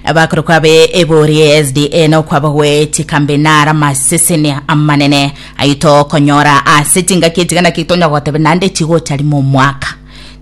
Abakorokwa be ebori ye SDA nokwabo gweeti kambe nara amaseseni amanene ayio tokonyora ase chingaki echiga naki tonya gotebe naende chigocha rimo omwaka.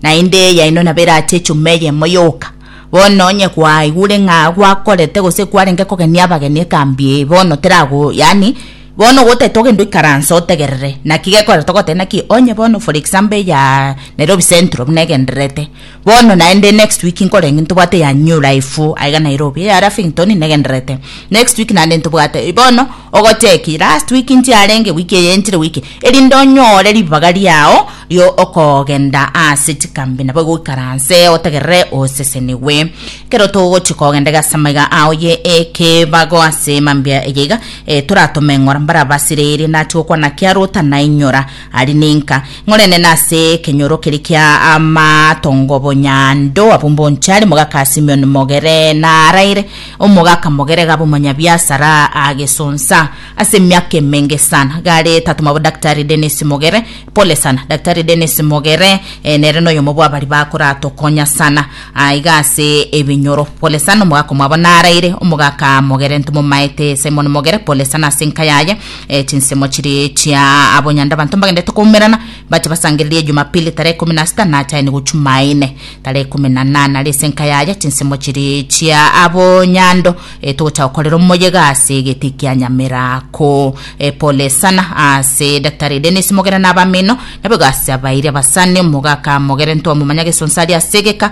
Naende yaino nabo erache echuma eyemo yoka. Bono onye kwaigure ng'a gwakorete gose kwarenge kogenia abageni ekambi eye bono terago yaani bono gotete ogende oikaranse otegerere naki gekorete ogoteba naki onye bono for example eya Nairobi Central buna egendererete Bono naende next week nkore eng'e ntobwate ya new life aiga Nairobi eya Lavington negendererete next week naende ntobwate bono ogocheki last week ntiarenge week eye nchire week erinde onyore ribaga riao rio okogenda ase chikambi nabo igoikaranse otegerere osesenigwe ekero togochia kogenda iga ase amaiga ao ye ekebago ase mambia eye iga toratome ng'ora mbarabasireirie nachia gokwana kiarota nainyora Aria ninka ng'orenene ase ekenyoro keria kia amatongo bonyando, abwo mbonchare mogaka ase Simeoni mogere naraire, omogaka mogere Gabo omonyabiasara agesonsa ase emiaka emenge sana, gare tatoma bo Daktari Dennis Mogere. Pole sana Daktari Dennis Mogere, eh, nere noyomo bw'abari bakoratokonya sana ah, iga ase ebinyoro. Pole sana omogaka omwabo naraire, omogaka Mogere ntomomaete Simon Mogere, pole sana ase enka yaye. E, chinsemo chiria chia abonyandabanto mbagenderete koumerana bache basangererie Jumapili tarehe ikumi na sita na chaini gochia Jumaine tarehe ikumi na nane aria ase enka yaya chinsemo chiria chia abonyando e, togocha gokorera omoyega ase egeti kia Nyamirako. E, pole sana ase Daktari Dennis Mogere na abamino, naboigo ase abairi abasani, omogaka Mogere ntwamomanyaga esonsa aria ase egeka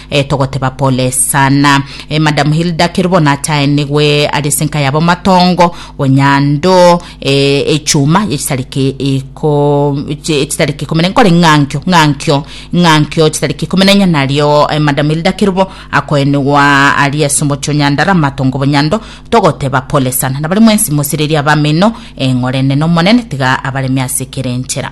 E, togoteba pole sana. E, Madam Hilda kero bono achaenigwe ari ase enka yabo matongo, onyando, e, echuma ye chisareke iko chi- chisareke ikomi na nkore ng'ankio ng'ankio ng'ankio chisareke ikomi na inya nario e, Madam Hilda Kerubo akoenigwa ari ase omochi o Nyandara matongo bonyando togoteba pole sana na baria mwensi mosireria abamino eng'orenene Omonene tiga abaremie ase kera enchera.